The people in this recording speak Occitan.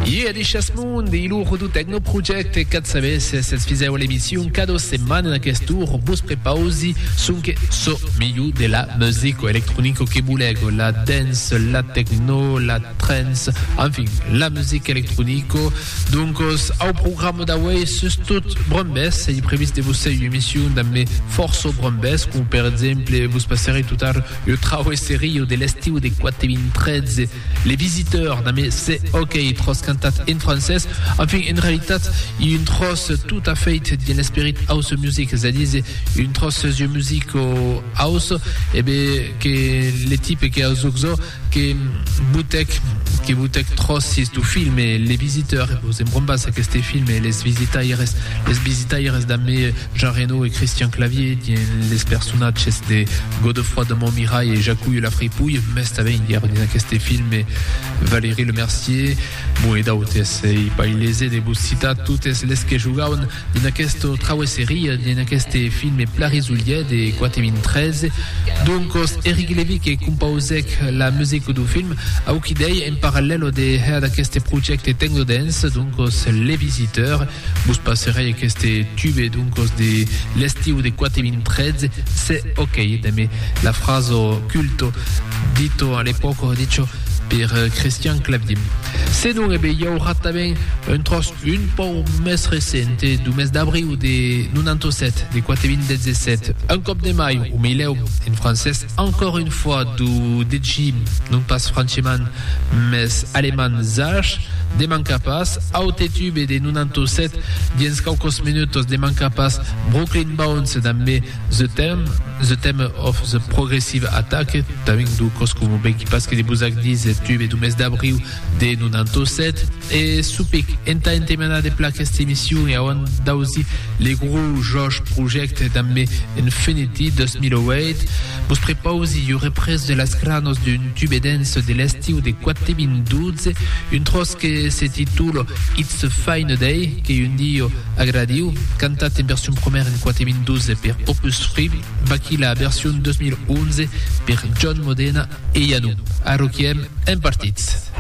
Iè de Chasmond e lo Rodo Techno Project e qu'at sabés s'es fisèu l'emission cada setmana en aquest tour vos prepausi sonque çò melhor de la musico electronico que volègo la dance la techno la trance en fin la musica electronico doncos au programa d'auei sus tot brombès e previst de vos sei emission damb me forço brombès com per exemple vos passaré totar eu trauesserio de l'estiu de 4 2013 Les Visiteurs, damb es se òquei tròç cantat en francés, enfin, en realitat, ei un tròç tot a fait d'un esperit house music, es a díser, un tròç jeu music o house, e be que le tipe que a zoczo que botèc, que botèc tròçes dau film Les Visiteurs, e vos embrombas aqueste film Les Visitaires, Les Visitaires damb Jean Reno e Christian Clavier dient les personatges de Godefroid de Montmirail e Jacouille la Fripouille, mès tanben ièron dins aqueste filme Valérie Lemercier, bon e d'autes. Ei pas ilese de vos citar totes les que jogauen dins aquesta trauesseria, dins aqueste filme Plarisollier de 4.013. Doncos, Eric Levy que compausèc la musica dau film, auquidei en parallèlo de hèr d'aqueste projècte Tecnodance, doncos Le Visiteur, Vos passerai aqueste tube doncos de l'estiu de 4.013, se ok, dambe la fraso culto dito a l'epòca dicho per Christian Clavier. Se non, e be i aurà tanben un tròç un pòu mès recent, e do mes d'abriu de 97, de 4.017, un còp de mai, o meilèu, en francés, Encore une fois do degi non pas franchement mes alemand zach de manca pas aute tube de 97 dins quaucos minutos de manca pas Brooklyn Bounce damb me the theme the theme of the progressive attack tabin do cos como benqui pas que de vos ac dise tube do mes d'abriu de 97 e supic entà entemenar de pla aquesta emission e auant d'ausir le gro jòch projècte damb me Infinity 2008 vos prepausi ua represa de las cranos d'un tube dense de l'estiu de 4.012 un tròç que se titula It's a Fine Day que un diu agradiu cantat en version promèra en 4.012 per Opus 3 Vaqui la version 2011 per John Modena e Ianu. Arroquiem en partits.